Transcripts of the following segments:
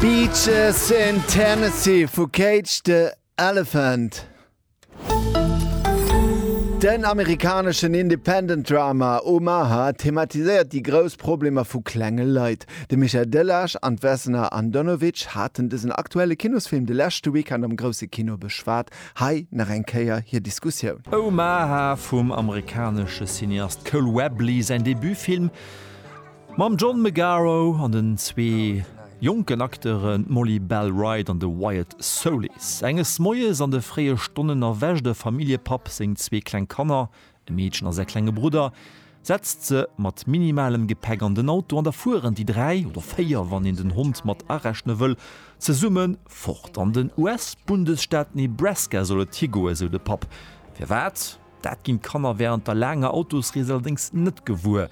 Beaches in Tennessee vu Cage the Elephant. Den amerikaneschen Independent-Drama Omaha thematiséiert déi grouss Problemer vu klenge Leit. De Michael Delage an d'Vesna Andonovic haten dësen aktuelle Kinosfilm de leschte Weekend am grousse Kino beschwat. Hei nach eng Kéier hir Diskussioun. Omaha vum amerikanesche Cineast Cole Webley säin Debutfilm. Mam John Magaro an den zwee jonken Acteuren, d'Molly Bell Wright an de Wyatt Soulis. Enges Moies an de fréie Stonnen erwächt e Familljepapp seng zwee kleng Kanner, e Meedchen a säi klenge Brudder, setzt se mat minimalem Gepäck an den Auto an da fueren déi dräi, oder véier wann een den Hond mat arechne wëll, zesumme fort. An den US-Bundesstaat Nebraska soll et higoen, sou de Papp. Firwat? Dat ginn d'Kanner wärend der laanger Autosrees allerdéngs net gewuer.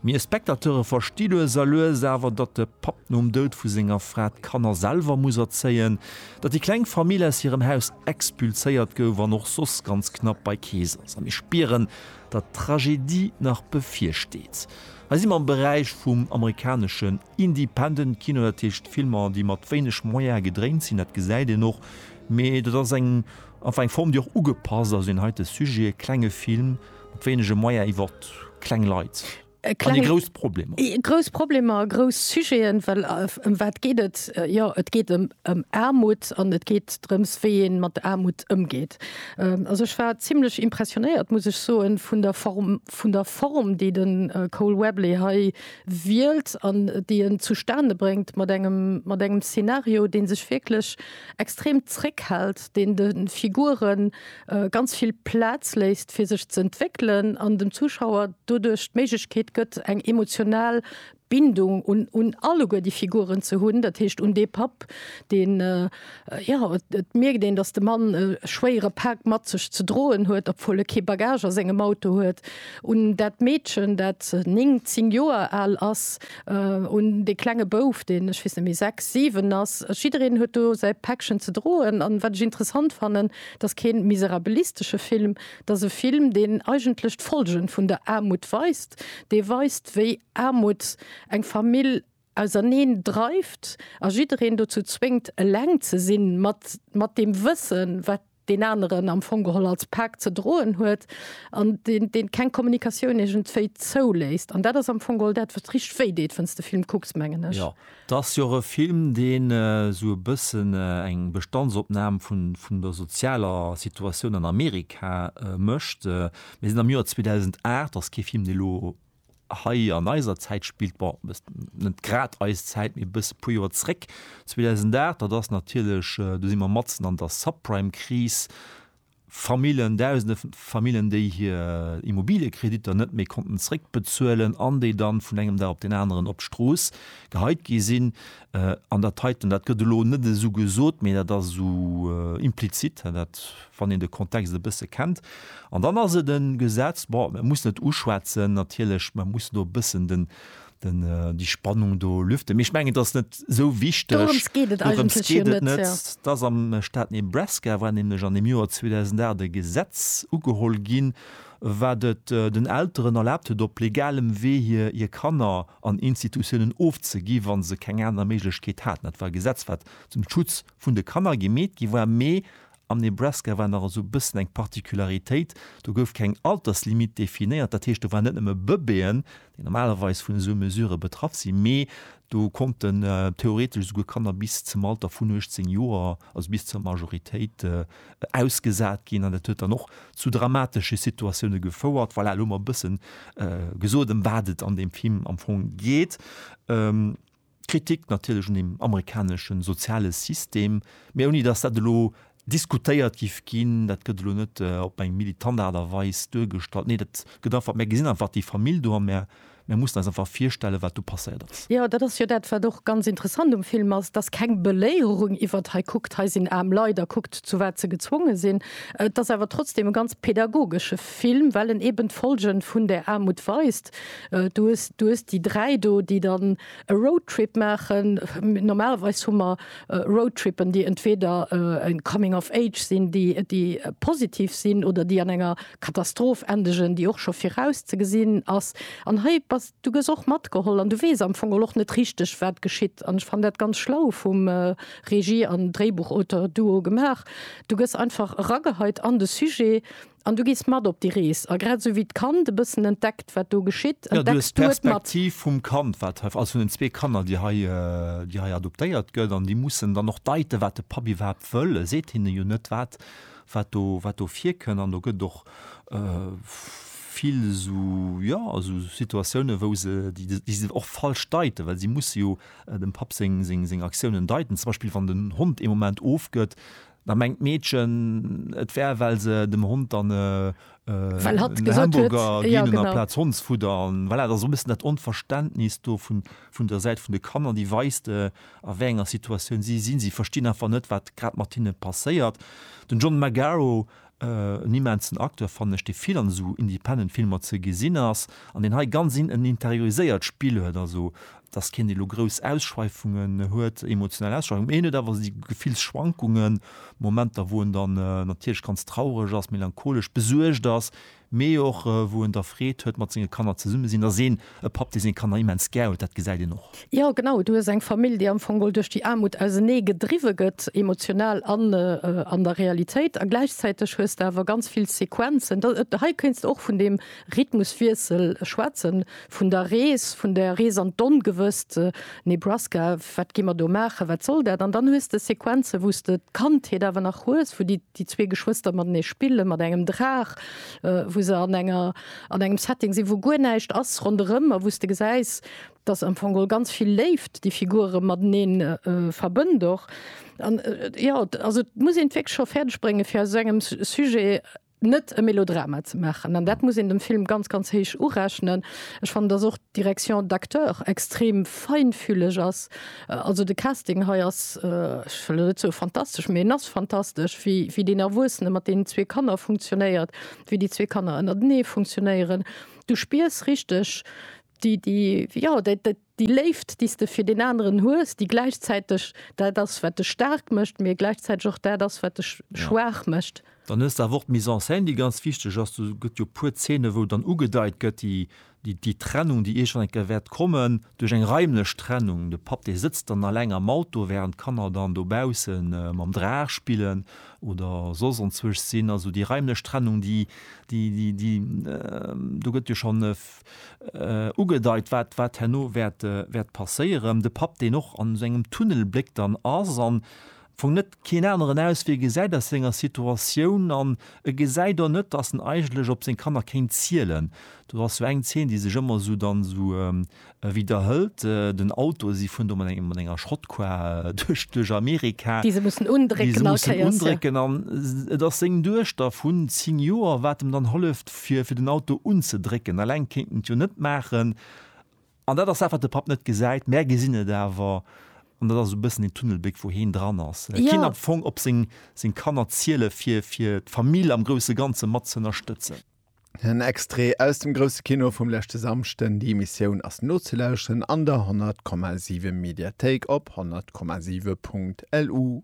Mir Spectateure versti lues a lues awer, datt de Papp nom Doud vu senger Fra d'Kanner selwer muss erzéien, datt déi kleng Famill aus hirem Haus expulséiert gouf an och soss ganz knapp bei Kees ass. A mir spieren, datt d'Tragedie nach bevirsteet. Hei si mer am Beräich vum amerikaneschen Independent Kino, dat heescht Filmer, déi mat wéineg Moyene gedréint sinn. Dat gesäit een och, mee dat ass eng, enfin eng Form, déi och ugepasst ass un heite Sujet, e klenge Film, Mat wéinege Moyen iwwer kleng Leit. Kleng, an grouss Problemer. Grouss Problemer, grouss Sujeten, well ëm wat geet et? Jo, et geet ëm Aarmut an et geet drëms, wéi ee mat Aarmut ëmgeet. Also ech war zimlech impressionéiert, muss ech soen, vun der Form, vun der Form, déi de Cole Webley hei wielt an déi en zustane bréngt mat engem, mat engem Szenario, dee sech wierklech extrem zréckhält, deen de Figuren ganz vill Plaz léisst fir sech ze entwéckelen an dem Zuschauer doduerch d'Méiglechkeet gëtt eng emotional Bindung un un alleguer déi Figuren ze hunn, dat heescht un dee Papp deen jo et mierkt een datt de Mann e schwéiere Pak mat sech ze droen huet obwuel e kee Bagage a sengem Auto huet, un dat Meedchen dat 9, 10 Joer al ass, un dee klenge Bouf deen ech weess net méi 6, 7 ass. Jiddereen huet do säi Päckchen ze droen an wat ech interessant fannen, 't ass kee miserabilistesche Film, 't ass e Film, deen eigentlech d'Folgen vun der Aarmut weist, dee weist, wéi Aarmut eng Famill auserneen dreift a jiddereen dozou zwéngt, eleng ze sinn, mat, mat deem Wëssen, wat deen aneren am Fong geholl als Pak ze droen huet, an deen, deen keng Kommunikatioun iergendwéi zouléisst. An dat ass am Fong geholl dat, wat richteg wéi deet, wann s de Film kucks, mengen ech. 't ass jo och e Film, deen esou e bëssen eng Bestandsopnam vun der sozialer Situatioun an Amerika mécht. Mir sinn am Joer 2008, ass kee Film, dee elo hei an eiser Zäit spillt, bon, net grad eis Zäit, mee e bësse, e puer Joer zréck, 2008, dat ass natierlech, do si mer matzen an der Subprime-Kris, Famillen, dausende Famillen, déi hir Immobiliëkreditter net méi konnten zréckbezuelen an déi dann vun engem Dag op deen aneren op d'Strooss geheit gi sinn. An dat heiten, dat gëtt elo net esou gesot, mee dat ass esou implizit, dat, wann een de Kontext e bësse kennt. An dann ass et e Gesetz, bon, mir mussen et uschwätzen natierlech, mir mussen do e bëssen den, den die Spannung do lüften. Ech mengen das net so wichteg Dorëms geet et Dorëms geet et net. Ja. Dass am Staat Nebraska war nämlech an dem Joer 2008 e Gesetz ugeholl ginn, wat et äh, den Elteren erlaabt huet, op legalem Wee hir hir Kanner an Institutiounen ofzegi wann se keng aner Méiglechkeet haten. Dat war e Gesetz wat zum Schutz vun de Kanner gemeet gi war, mee Am Nebraska war nach esou e bëssen eng Particularitéit, do gouf keng Alterslimite definéiert. Dat heescht, do waren net nëmme Bëbeeën, déi normalerweis vun esou Mesurë betraff sinn, mee do konnten theoretesch esouguer Kanner bis zum Alter vun 18 Joer, also bis zur Majoritéit, ausgesat ginn. An dat huet dann och zu dramatesche Situatioune gefouert. Voilà, elo hu mer e bësse gesot, ëm wat et an deem Film am Fong geet. Kritik natierlech un dem amerikanesche soziale System, mä ouni datt dat elo diskutéiert géif ginn. Dat gëtt elo net op eng militant Aart a Weis duergestallt. Nee, dat gëtt einfach, mär gesinn einfach déi Famill do a mär mussen eis einfach virstellen, wat do passéiert ass. Jo, dat ass jo dat, wat och ganz interessant um Film ass, dass keng Beléierung iwwert hei kuckt, hei sinn aarm Leit a kuckt, zu wat se gezwonge sinn. Et ass awer trotzdem e ganz pädagogesche Film, well en eeben d'Folge vun där Aarmut weist. Du hues, du hues déi dräi do, déi dann e Roadtrip maachen. Normalerweis hu mer Roadtrippen, déi entweder e Coming of Age sinn, déi, déi positiv sinn oder déi an enger Katastroph endegen, déi och scho viraus ze gesinn ass. An hei bass, du gëss och matgeholl an du weess am Fong och net richteg, wat geschitt. An ech fannen dat ganz schlau vum Regie an Dréibuchauteur-Duo gemaach. Du gëss einfach erageheit an de Sujet. An du gees mat op déi Rees. A grad esou wéi d'Kand e bëssen entdeckt, wat do geschitt, entdecks du et mat. Jo, du hues d'Perspektiv vum Kand, wat hei, also vun den zwee Kanner, déi hei, déi hei adoptéiert gëtt. An déi mussen dann och deiten, wat de Papp iwwerhaapt wëll. E seet hinne jo net, wat, wat do, wat do virkënn. An do gëtt et och vill esou, jo, esou Situatiounen, wou se, déi, déi se och falsch deiten, well si musse jo dem Papp seng, seng, seng Aktiounen deiten. Zum Beispill, wann den Hond ee Moment ofgëtt, Da mengt d'Meedchen, et wär, well se dem Hond dann e Hamburger ginn hunn amplaz Hondsfudder. An voilà, et ass och e bëssen dat Onverständnis do vun der Säit vun de Kanner, déi weist, a wéi enger Situatioun si sinn. Si verstinn einfach net, wat grad mat hinne passéiert. Den John Magaro En immensen Acteur fannen ech, dee vill an esou independent Filmer ze gesinn ass an deen hei ganz en interioriséiert Spill huet, also dass keen dee lo grouss Ausschweifungen huet, emotional Ausschweifungen, mee hien huet awer esou Gefillsschwankungen, Momenter wou en dann natierlech ganz traureg ass, melancholesch, besuergt ass, mee och wou en der Freed huet mat senge Kanner zesumme sinn, ass een e Papp dee seng Kanner immens gär huet, dat gesäit een och. Jo genau, du hues eng Famill déi am Fong mol duerch déi Aarmut ausenee gedriwwe gëtt, emotional an an der Realitéit, a gläichzäiteg hues de awer ganz vill Sequenzen, hei kéints de och vun deem Rhythmuswiessel schwätzen, vun der Rees, vun der Rees an d'Ongewësst, Nebraska, wat gi mer do maachen, wat soll dat, an dann hues de Sequenzen wou s de d'Kandheet awer nach hues, wou déi. déi zwee Geschwëster matenee spillen, mat engem Draach, wou se an enger, an engem Setting sinn, wou guer näischt ass ronderëm a wou s de gesäis, dass am Fong geholl ganz vill Léift déi Figure matenee verbënnt och. An jo, also et muss een et wierklech scho fäerdeg bréngen, fir aus esou engem Sujet net e Melodrama ze maachen. An dat muss een dem Film ganz, ganz héich urechnen. Ech fannen, dass och d'Direction d'acteurs extrem feinfühleg ass. Also de Casting hei ass, ech wëll elo net soe fantastesch, mee en ass fantastesch, wéi, wéi deen Erwuessene mat deenen zwee Kanner funktionéiert, wéi déi zwee Kanner ënnertenee funktionéieren. Du spiers richteg déi, déi, jo, dat, dat, déi Léift, déi s de fir deen aneren hues, déi gläichzäiteg dat ass, wat dech staark mécht, mee gläichzäiteg och dat ass, wat dech schwaach mécht. Dann hues de awer och d'Mise en scène, déi ganz wichteg ass. Do gëtt jo e puer Zeene, wou dann ugedeit gëtt, déi déi Trennung, déi iergend eng Kéier wäert kommen, duerch eng raimlech Trennung, de Papp, dee sëtzt dann alleng am Auto, wärend d'Kanner dann dobausse mam Draach spillen oder soss onzwuecht sinn. Also déi raimlech Trennung, déi, déi, déi, déi, do gëtt jo schonn ugedeit, wat, wat herno wäert, wäert passéieren. De Papp, deen och an esou engem Tunnel bléckt an ass an Fong net keen aneren aus wéi e gesäit aus senger Situatioun an e gesäit och net dass en eigentlech op seng Kanner kéint zielen. Do ass sou eng Zeen déi sech ëmmer sou dann esou widerhëlt, den Auto, si fueren do mat engem mat enger Schrottkar duerch duerch Amerika, Déi se mussen déi se undrécken all mussen Kéiers, ja. undrécken an et ass seng Duechter vun 10 Joer wat em dann holleft fir fir den Auto unzedrécken, alleng kéint en et jo net maachen. An dat ass dat, wat de Papp net gesäit. Mär gesinn et awer. An dat ass esou e bëssen deen Tunnelbléck, wou heen dran ass. Et kéint am Fong op seng, seng Kanner ziele fir, fir d'Famill am grousse Ganze mat ze ënnerstëtzen. En Extrait aus dem Grousse Kino vum leschte Samschden. Déi Emissioun ass nozelauschteren an der 100,7 Mediathéik op 100,7.lu.